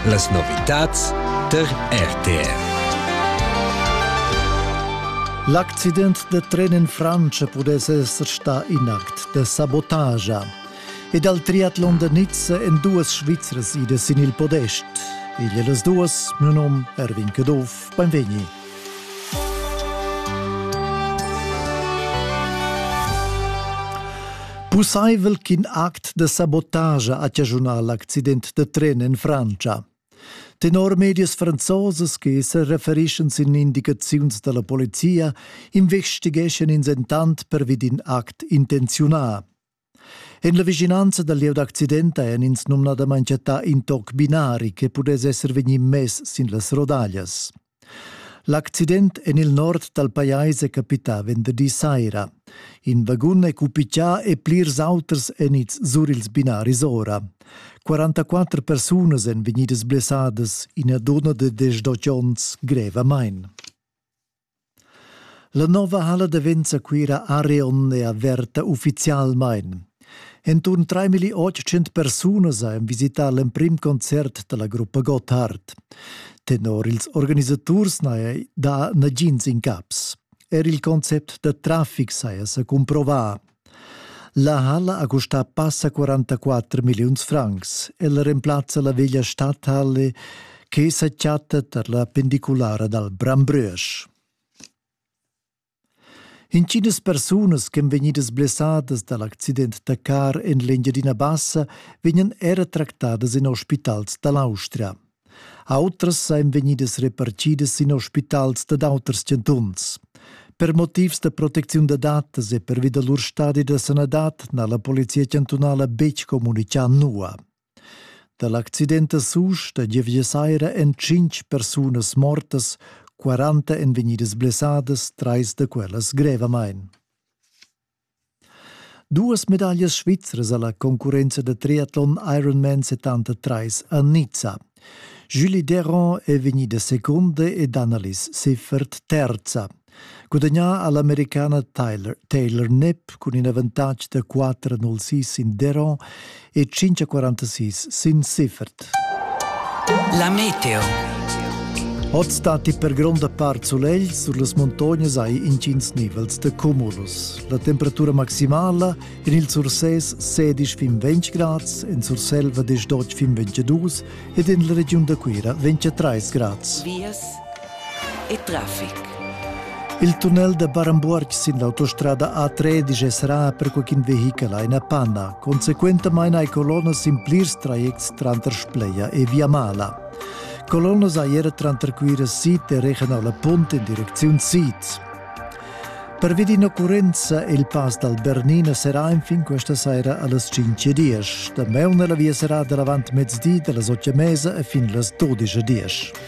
Las novitads tar RTR. L'accident da tren in Frantscha pudess esser stà in act da sabotagia. E dal triatlon da Nizza en duas Svizras idas sin il podest. Igl e las duas, mio nom Erwin Caduff, benvegni. Pussaivel ch'in act da sabotagia ha chaschunà l'accident da tren en Frantscha. Tenor medias franzosas che sa referischan sin indicaziuns da la polizia, investigeschan ins entant pervi d'in act intenziunà. En la vischinanza dal lieu d'accident hajan ins numnadamain chattà in toc binari che pudess esser vegnì mess sin las rodaglias. L'accident en il nord dal pajais è capità venderdi saira. In vagun è cupigià e plirs auters èn ids sur ils binaris ora. 44 persunas èn vegnidas blessadas, ina dunna de 18 onns grevamain. La nova halla davenza Cuira area onde averta ufficialmein. Entun 3800 persunas ein visitar l'emprim concert dalla gruppa Gotthard. Tenor ils organisaturs n'hai da nagins incaps. Er il concept da traffic saja sa cumprova. La halla ha custà passa 44 milliuns francs. Ella remplazza la veglia stadhalle che sa chatta tar la pendiculara dal Brambrösch. Intginas persunas ch'en vegnidas blessadas dal accident da car en l'Engiadina Bassa vegnan era tractadas en ospitals da l'Austria. Autras ein vegnidas repartidas sin hospitals dad auters chantuns. Per motivs da protecziun da datas e pervi da lur stadi da sanadad n'ha la polizia chantunala betg communitgà nua. Da l'accident a Susch da gievgia saira èn tschintg persunas mortas, 40 èn vegnidas blessadas, trais da quellas grevamain. Duas medaglias svizras alla concurrenza da triatlon Ironman 73 a Nizza. Julie Deron è vegnida seconda ed Annalise Siffert terza. Gudagnà ha l'Americana Taylor, Taylor Knapp cun in avantatg da 4-0-6 in Deron e 546 sin Siffert. La meteo. Oz datti per gronda part sulegl sur las muntognas hai intgins nivels de cumulus. La temperatura maximala en il Surses 16-20 grads, en Surselva 18-22 ed en la regiun da Cuira 23 grads. Vias e traffic. Il tunnel da Barambuorg sin l'autostrada A13 è serrà per qualcun vehichel a ina panna. Consequentamain hai colonnas sin plirs trajects tranter Spleia e Viamala. Colonnas hai era tranter Cuira Sid e Regionala Punt in direcziun sid. Pervi d'in'occurrenza il pass dal Bernina serrà enfin questa saira a las 5.10. Damaun è la via serrada davant mezdi da las 8.30 e fin las 12.10.